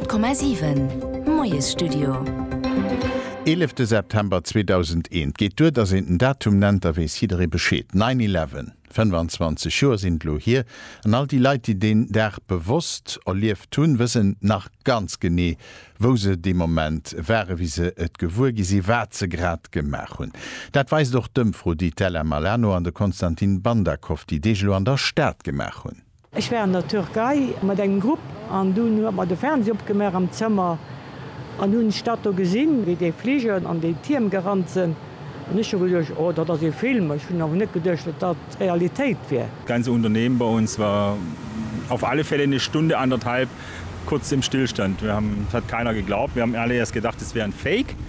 100,7 Moiesstudio. Eelefte September 2001, geet duer, datt een den Datum nennt, da weess jidderee Bescheed, Nine Eleven. 25 Joer sinn et elo hier, an all déi Leit, déi deen Dag bewosst erlieft hunn, wëssen nach ganz genee, wou se dee Moment waren, wéi se et gewuer gi sinn, wat se grad gemaach hunn. Dat weist och d'Ëmfro, déi d'Ella Malano an de Konstantin Bandakoff déi Deeg elo an der Stad gemaach hunn. Ech war an der Türkei mat engem Grupp an dunn hu mer de Fernseh opgemaach am Zëmmer an hunn d'Stad do gesinn, wéi déi Fliger an déi Tierm gerannt sinn an ech hu geduecht, oh dat ass ee Film, ech hunn awer net geduecht, datt dat d'Realitéit wier. Ganze Unternehmen bei uns war auf alle Fälle eine Stunde anderthalb kurz im Stillstand. Wir haben, es hat keiner geglaubt, wir haben alle erst gedacht, es wäre ein Fake.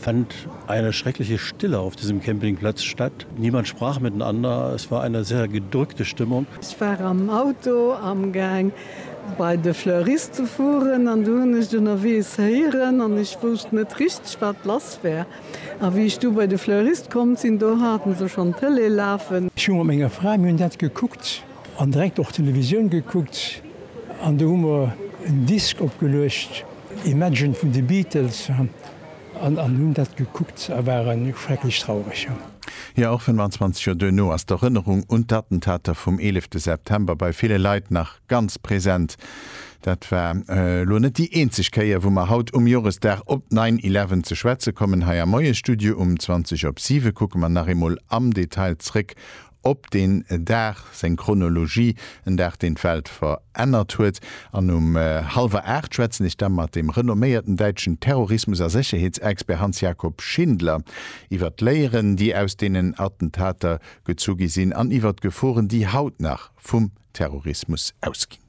Fand eine schreckliche Stille auf diesem Campingplatz statt. Niemand sprach miteinander. Es war eine sehr gedrückte Stimmung. Ech war am Auto amgaang bei de Fleurist ze fueren an du hunn ech ënnerweegs héieren an ech wousst net richteg wat lass war. A wéi ech du bei de Fleurist komm sinn, do haten se schonn d'Tëlee lafen. Ech hu mat menger Fra, mir hunn dat gekuckt an direkt och Televisioun gekuckt an du hu mer en Disk opgeluecht, Imagine vun de Beatles. An hunn dat gekuckt a waren schrecklech traureg, jo. Jo, och 25 Joer duerno ass d'Erënnerung un d'Attentater vum 11 September bei ville Leit nach ganz present. Dat war elo net déi eenzeg Kéier, wou mer haut um Joresdag op Nine Eleven ze schwätze kommen. Hei am Moie-Studio um 20 op 7 kucke mer nach eemol am Detail zréck op deen Dag, seng Chronologie, en Dag deen d'Welt verännert huet, an um hallwer 8 schwätzen ech da mat dem renomméierten däitschen Terrorismus a Sécherheetsexpert Hans Jakob Schindler iwwert d'Léieren déi aus deenen Attentater gezu gi sinn an iwwert d'Geforen déi haut nach vum Terrorismus ausginn.